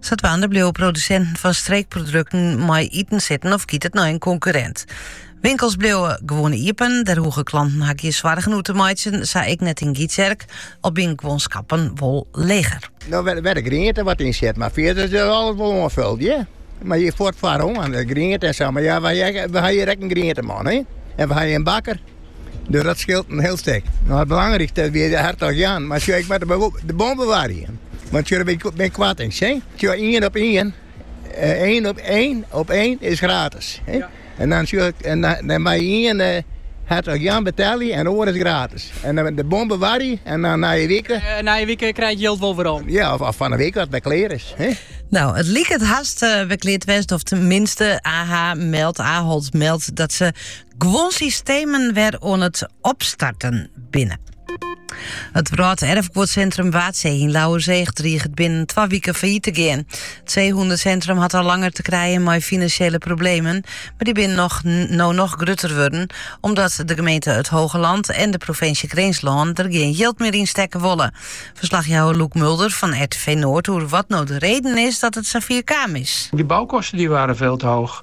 Sadwaande bliuwe produsinten fan streekprodukten mei iten sitten of giet it nei in konkurrint. Winkels bliuwe gewoan iepen, dêr hoege klanten har gjin soargen oer te meitsjen, sa ek net yn Gytsjerk, al binne guon skappen wol leger. No wêr de griente wat yn sit, mar fierder is alles wol oanfuld, ja. Mar ja, fuort, foaral de griente en sa. Mar ja, wy ha hjir ek in grienteman. Hè? En wy ha in bakker. Dat skeelt in hiel stik. Nee, it belangrykste wie de Hertog Jan, mar sjoch, ik moat de bon bewarje. Want hjir bin ik koarting, sjen. Hjir ien op ien, ien op ien op ien is gratis. En dan sjoch ik, en dan mei ien de Hertog Jan betelje en oar is gratis. En dan de bon bewarje en dan na in wike. Na in wike krij ik jild wol werom. Ja, of fan 'e wike as it klear is. No, it liket hast wer klear te wêzen, of tenminste, AH meldt, Ahold meldt dat se guon systemen wer oan it opstarten binne. It Wrâlderfguodsintrum Waadsee yn Lauwerseach driget binnen twa wiken failliet te gean. It seehûnesintrum hat al langer te krijen mei finansjele problemen, mar dy binne no noch grutter wurden, omdat de gemeente It Hogeland en de provinsje Grinslân der gjin jild mear yn stekke wolle. Ferslachjouwer Loek Mulder fan RTV Noord oer wat no de reden is dat it safier kaam is. De bouwkosten die waren veel te hoog.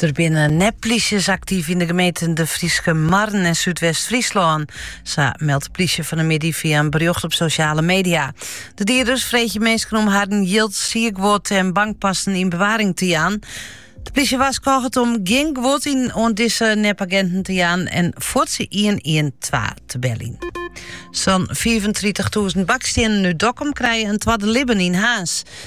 Der binne nepplysjes aktyf yn de gemeenten De Fryske Marren en Súdwest-Fryslân. Sa meldt de plysje fan 'e middei fia in berjocht op sosjale media. De dieders freegje minsken om harren jild, sierguod en bankpassen yn bewaring te jaan. De plysje warskôget om gjin guod oan dizze nepaginten te jaan en fuort 112 te beljen. Sa'n 35.000 bakstiennen út Dokkum krije in twadde libben yn Haas.